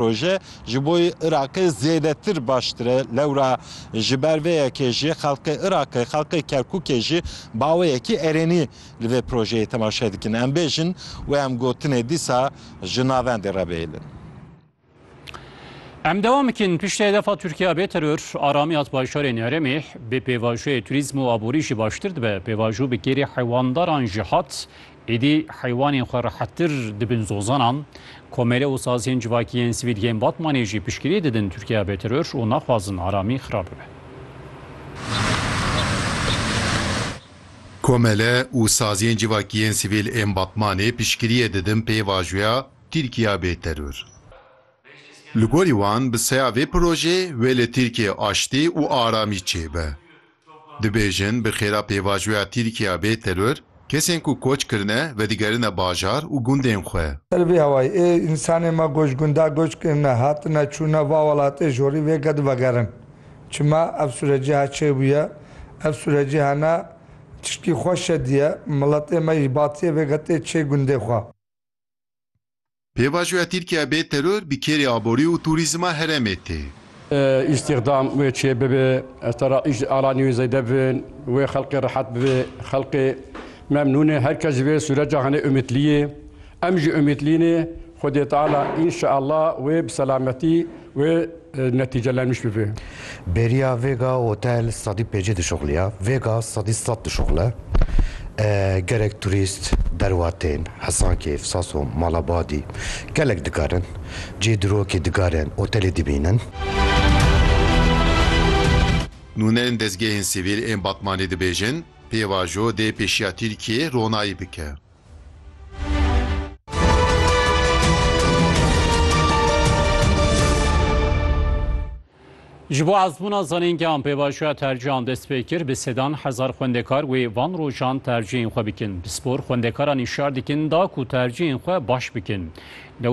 Proje ji bo Iraqê zêdetir baştir e, lewra ji ber vê yekê jî xelkê Iraqê, xelkê Kerkûkê jî baweyekî erênî li vê projeyê temaşe dikin. Em bêjin wê em gotinê dîsa ji navendê re bihêlin. Em dewam dikin, piştî hedefa Tirkiye bê teror, aramî hat bajarên herêmê, bê pêvajoyê turîzm û aborî jî baştir dibe, pêvajo bi kêrî hewandaran jî hat, Êdî heywanên xwe rehettir dibin zozanan. Komele û saziyên civakî yên Sivîlgehên Batmanê jî piştgirî didin Tirkiya bêteror û naxwazin aramî xirab bibe. Komele û saziyên civakî yên Sivîl ên Batmanê piştgiriyê didin pêvajoya Tirkiya bêteror. Li gorî wan bi seya vê projeyê wê li Tirkiyeyê aştî û aramî çêbe. Dibêjin bi xêra pêvajoya Tirkiya bê teror, kesên ku koç kirine vedigerine bajar û gundên xwe. Li vî hewayê, ê însanên me ku ji gundan göç kirine, hatine, çûne va welatê jorî vê ke divegerin. Çima? Ev sûrecîha çê bûye. Ev sûrecîha ne tiştî xweş e diye. Miletê me ji batiyê vê ke tê çê gundê xwe. Pêvajoya Tirkiye bê teror bi kêrê aborî û tûrîzma herêmê tê. Îstîxdam wê çê bibe, ez te ra îş ala nî wê zêde bin, wê xelkê rehet bibe, xelkê memnûn e, her kes ji vê sûreca hene umîtlî ye, em jî umîtlî ne, Xwedê Teala înşeallah wê bi selametî Wê netîce lemiş bibe. Beriya vêga hotel sedî pêncî dişuxliya, vêga sedî sed dişuxle. Gerek turîst, derwatên Hesankeyf, Saso, Malabadî gelek dikarin cih di rokê digarên hotelê dibînin. Nûnerên dezgehên sivîl ên Batmanê dibêjin, pêvajo dê pêşiya Tirkiyeyê ronayî bike. Ji bo ezmûna zanîngehan pêvajoya tercihan dest pê kir bi sedan hezar xwendekar wê van rojan tercihên xwe bikin. Bi spor xwendekaran îşar dikin da ku tercihên xwe baş bikin.